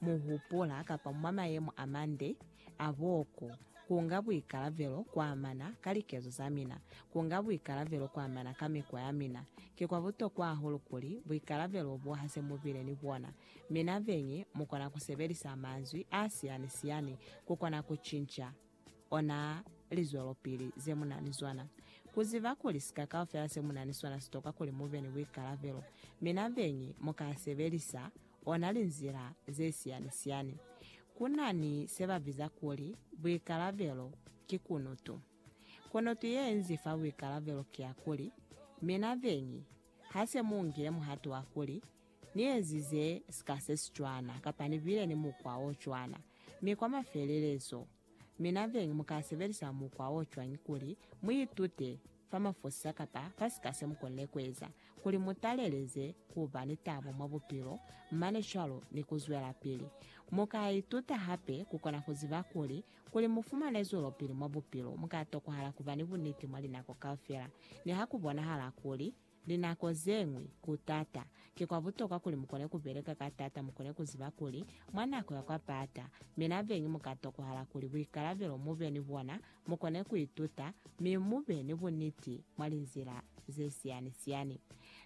mu hupula kapa mwa mayemo a mande a boku kunga buikalabelo kwa mana ka likezo za mina. Kunga buikalabelo kwa mana ka mikwa ya mina ki kwa butokwa hahulu kuli buikalabelo bo ha se mu bile ni bona. Mina beñi mu kona ku sebelisa manzwi a siani-siani ku kona ku cinca. Ona lizwelopili ze mu na ni zona. Ku ziba kuli sika kaufela se mu na ni sona si toka kuli mu be ni buikalabelo, mi na beñi mu ka sebelisa ona linzila ze siyani-siyani. Ku na ni se ba biza kuli buikalabelo ki kunutu. Kunutu ye inzi fa buikalabelo ki ya kuli, mi na beñi, ha se mu ngile muhato wa kuli Ni ezize sika se si cwana, kapa ni bile ni mukwa o cwana. Mi kwa mafelelezo, mina beñi mu ka sebelisa mukwa o cwañi kuli mu itute fa mafosisa kapa fa sika se mu konile ku eza, kuli mu taleleze ku ba ni tabo mwa bupilo, mane cwalo ni ku zwelapili? Mu ka ituta hape ku kona ku ziba kuli, kuli mu fumane zwelopili mwa bupilo, mu ka tokohala ku ba ni buniti mwa linako kaufela, niha ku bonahala kuli, Linako ze ñwi, ku t'ata. Ki kwa butokwa kuli mu kone ku beleka ka t'ata, mu kone ku ziba kuli, mwa nako ya kwa pata, mina beñi mu ka tokwahala kuli buikalabelo mu be ni bona, mu kone ku ituta, mi mu be ni buniti mwa linzila ze siyani-siyani.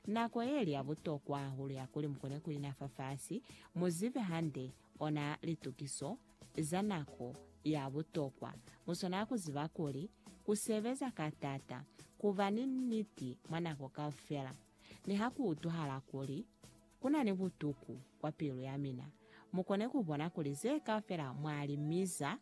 Nako ye li ya butokwa hahulu ya kuli mu kone ku ina fafasi, mu zibe hande ona litukiso, za nako ya butokwa mu swanela ku ziba kuli, ku sebeza ka t'ata, ku ba ni niti mwa nako kaufela. Niha ku utwahala kuli ku na ni butuku kwa pilu ya mina, mu kone ku bona kuli ze kaufela mwa li miza.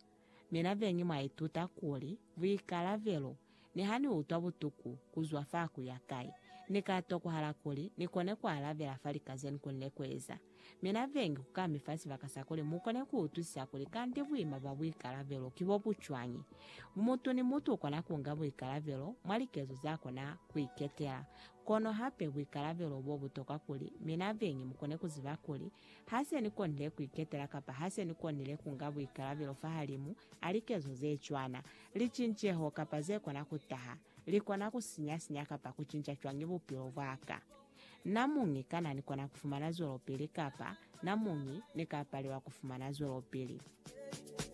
Mina beñi mwa ituta kuli buikalabelo Niha ni utwa butuku ku zwa fa ku ya kai, ni ka tokohala kuli ni kone ku alabela fa lika ze ni konile ku eza. Mi na bengi ku ka mi fa sibaka sa kuli mu kone ku utwisisa kuli kanti buima bwa buikalabelo ki bo bu cwañi. Mutu ni mutu u kona ku nga buikalabelo mwa likezo za kona ku iketela. Kono hape buikalabelo bo bu tokwa kuli mi na bengi mu kone ku ziba kuli Ha se ni konile ku iketela kapa ha se ni konile ku nga buikalabelo fahalimu a likezo ze cwana, licinceho kapa ze kona ku taha, li kona ku sinya-sinya kapa ku cinca cwañi bupilo bwa ka? Namuñi kana ni kona ku fumana zwelopili kapa namuñi ni ka palelwa ku fumana zwelopili?